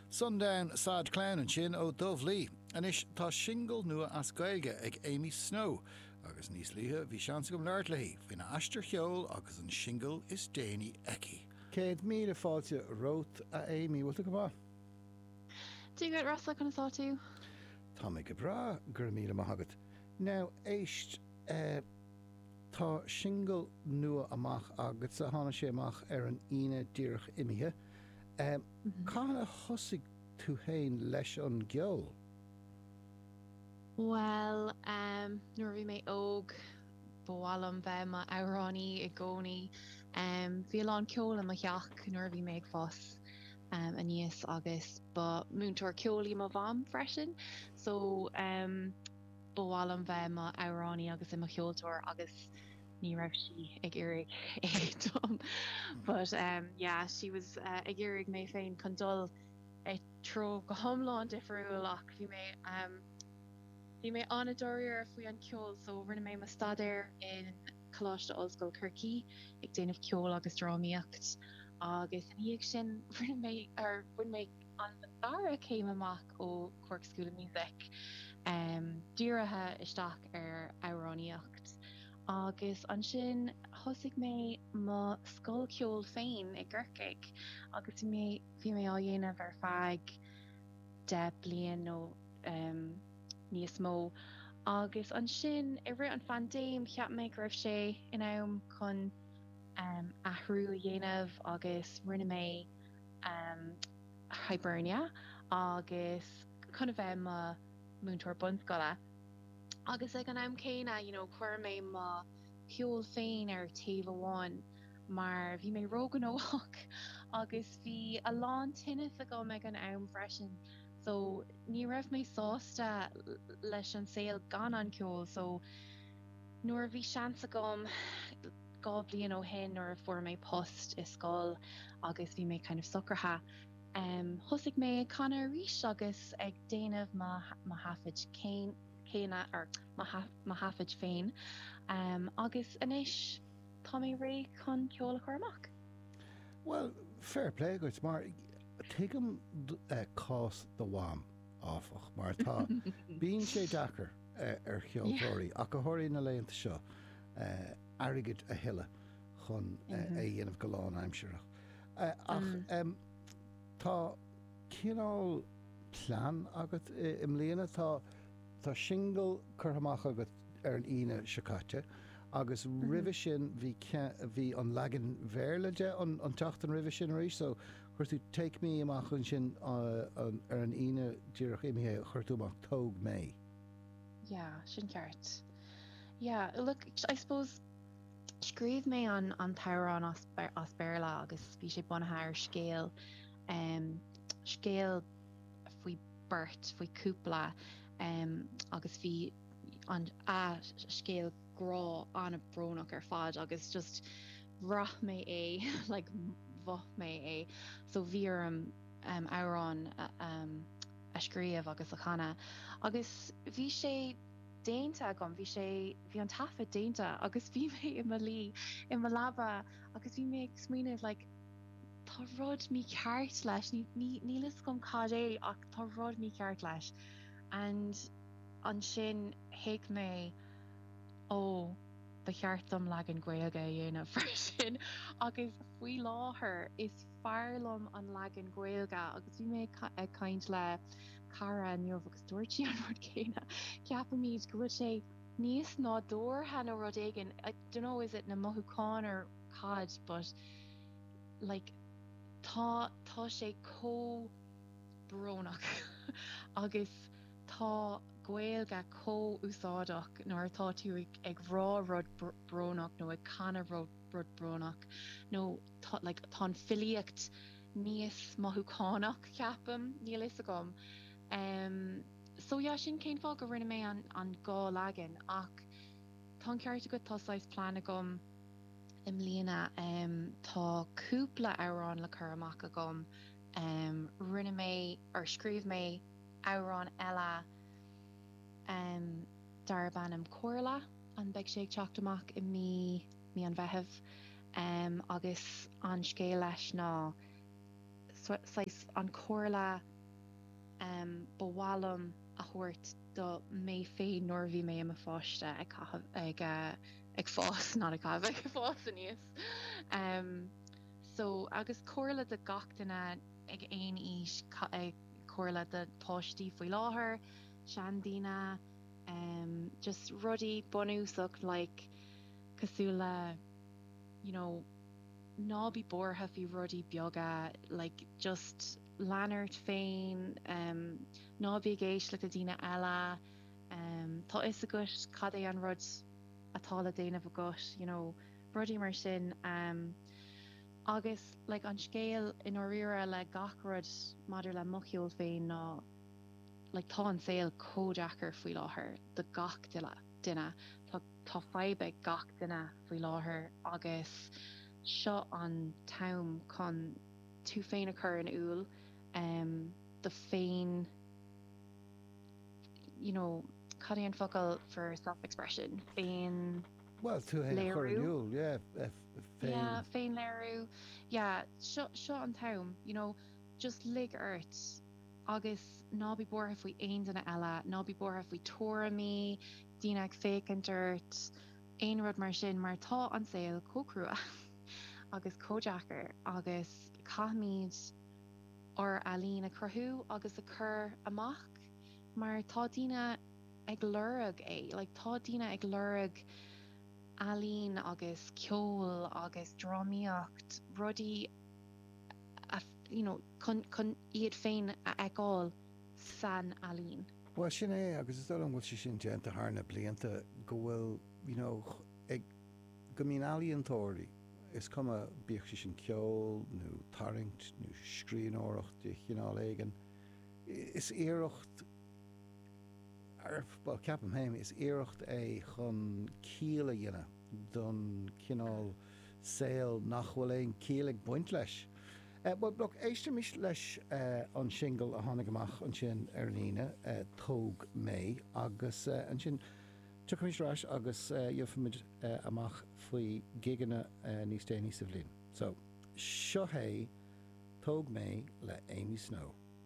Sundown Sad Clown ansin ó Dove Lee. Anois tá singil nua as Gaeilge ag Amy Snow agus níos luaithe bhí seans agam labhairt léi faoina aistear cheoil agus an singil is déanaí aici. Céad míle fáilte romhat, a Amy. Bhfuil tú go maith? Doing great, Rossa. Conas atá tú? Tá mé go breá, go raibh míle maith agat. Now, éist, eh, tá singil nua amach agatsa, tháinig sé amach ar an Aoine díreach imithe. Cathain a thosaigh tú féin leis an gceol? Bhuel, nuair a bhí mé óg, ba mhaith liom bheith mar amhránaí i gcónaí. Bhí a lán ceol i mo theach nuair a bhí mé ag fás aníos agus ba múinteoir ceoil í mo mham freisin, so ba mhaith liom bheith mar amhránaí agus i mo cheoltóir agus ní raibh sí ag iarraidh é dom but umm yeah sí was ag iarraidh mé féin chun dul i dtreo go hiomlán difriúil ach bhí mé umm bhí mé an-dáiríre faoi an ceol so rinne mé mo staidéar in Coláiste Ollscoil Chorcaí ag déanamh ceoil agus drámaíocht agus ina dhiaidh sin rinne mé or bhain mé an dara céim amach ó Cork School of Music, dírithe isteach ar amhránaíocht agus ansin thosaigh mé mo scoil ceoil féin i gCorcaigh agus bhí mé á dhéanamh ar feadh deich bliain nó níos mó agus ansin i rith an phandéim cheap mé go raibh sé in am chun athrú a dhéanamh agus rinne mé um Hibernia agus chun a bheith i mo mhúinteoir bunscoile agus ag an am céanna you know chuir mé mo cheol féin ar taobh amháin mar bhí mé róghnóthach agus bhí a lán tinneas agam ag an am freisin so ní raibh mé sásta leis an saol gan an ceol so nuair a bhí seans agam dhá bhliain ó shin nuair a fuair mé post i scoil agus bhí mé kind of socraithe. Thosaigh mé ag canadh arís agus ag déanamh mo thaifid céanna, or mo thaifid féin, agus anois tá mé réidh chun ceol a chur amach. Bhuel, fair play dhuit mar tuigim cás do Mham, áfach, mar tá, bíonn sé deacair ar cheoltóirí, ach go háirithe na laethanta seo, airgid a thuilleadh chun é a dhéanamh go lánaimsearach. Ach tá cineál plean agat i mbliana. Tá singil curtha amach agat ar an Aoine seo caite agus roimhe sin bhí an leagan Bhéarla de an tseachtain roimhe sin arís. So chuir tú Take Me amach ansin ar an Aoine díreach imithe chuir tú amach Tóg Mé. Yeah, sin ceart. Yeah, look, I suppose scríobh mé an, an t-amhrán as, as Béarla agus bhí sé bunaithe ar scéal, um, scéal faoi beirt, faoi cúpla, um, agus bhí an a scéal grá ana-bhrónach ar fad agus just bhraith mé é, like, mhoth mé é. So bhí orm um, amhrán um, a scríobh agus a chanadh agus bhí sé déanta agam, bhí sé, bhí an taifead déanta agus bhí mé i mo luí i mo leaba agus bhí mé ag smaoineamh like tá rud mícheart leis, ní, ní, níl fhios agam cad é ach tá rud mícheart leis and ansin thuig mé ó ba cheart dom leagan Gaeilge a dhéanamh freisin agus faoi láthair is. b'fhearr liom an leagan Gaeilge agus bhí mé ag caint le cara inniu agus dúirt sí an rud céanna. Ceapaimid go bhfuil sé níos nádúrtha nó rud éigin, I don't know is it na mothúcháin or cad but like tá tá sé comh brónach agus tá Gaeilge comh úsáideach nuair atá tú ag rá rud brónach nó ag canadh rud brónach nó tá like tá an filíocht níos mothúchánach ceapaim níl fhios agam em so yeah sin cén fáth go rinne mé an an dhá leagan ach tá an ceart agat tá saghas plean agam i mbliana em tá cúpla amhrán le cur amach agam em rinne mé or scríobh mé amhrán eile em darb ainm Comhairle and beidh sé ag teacht amach i mí mí an Mheithimh agus an scéal leis ná saghas an chomhairle ba mhaith liom a thabhairt do mé féin nuair a bhí mé i mo pháiste ag caitheamh, ag fás, not ag caitheamh, ag fás aníos. So, agus comhairle do gach duine ag aon aois, comhairle do pháistí faoi láthair, seandaoine, just rudaí bunúsach like, cosúil le you know ná bí buartha faoi rudaí beaga like just lean ort féin em ná bí ag éisteacht le daoine eile em tá fhios agat cad é an rud atá le déanamh agat you know rudaí mar sin em agus like an scéal i ndáiríre le gach rud maidir le mo cheol féin ná like tá an saol comh deacair faoi láthair do gach duine tá Tá fadhb ag gach duine faoi láthair agus seo an t-am chun tú féin a chur in iúl duit féin you know cad é an focal for self expression féin Well tú féin a chur in iúl yeah féin féin léirú yeah seo seo an t-am you know just lig ort Agus ná bí buartha faoi aon duine eile, ná bí buartha faoi tuairimí, daoine ag féachaint ort, aon rud mar sin mar tá an saol chomh crua agus chomh deacair agus caithfimid ár ealaín a chruthú agus a chur amach mar tá daoine ag lorg é, like tá daoine ag lorg ealaín agus ceol agus drámaíocht, rudaí a, you know. chun iad féin a fheiceáil san ealaín. Bhuel, sin é agus is dóigh liom go bhfuil sé sin déanta thar na blianta, go bhfuil, you know, ag, go mbíonn ealaíontóirí, is cuma, bíodh sé sin ceol nó tarraingt nó scríbhneoireacht de chineál éigin, is iarracht, á, bhuel, ceapaim féin, is iarracht é chun ciall a dhéanamh don chineál saol nach bhfuil aon chiall ag baint leis. Bhuel, féach, éistimis leis an singil a tháinig amach ansin ar an Aoine, Tóg Mé, agus ansin tiocfaimid ar ais agus gheofaimid amach faoi gigeanna níos déanaí sa bhliain. So, seo hé Tóg Mé le Amy Snow.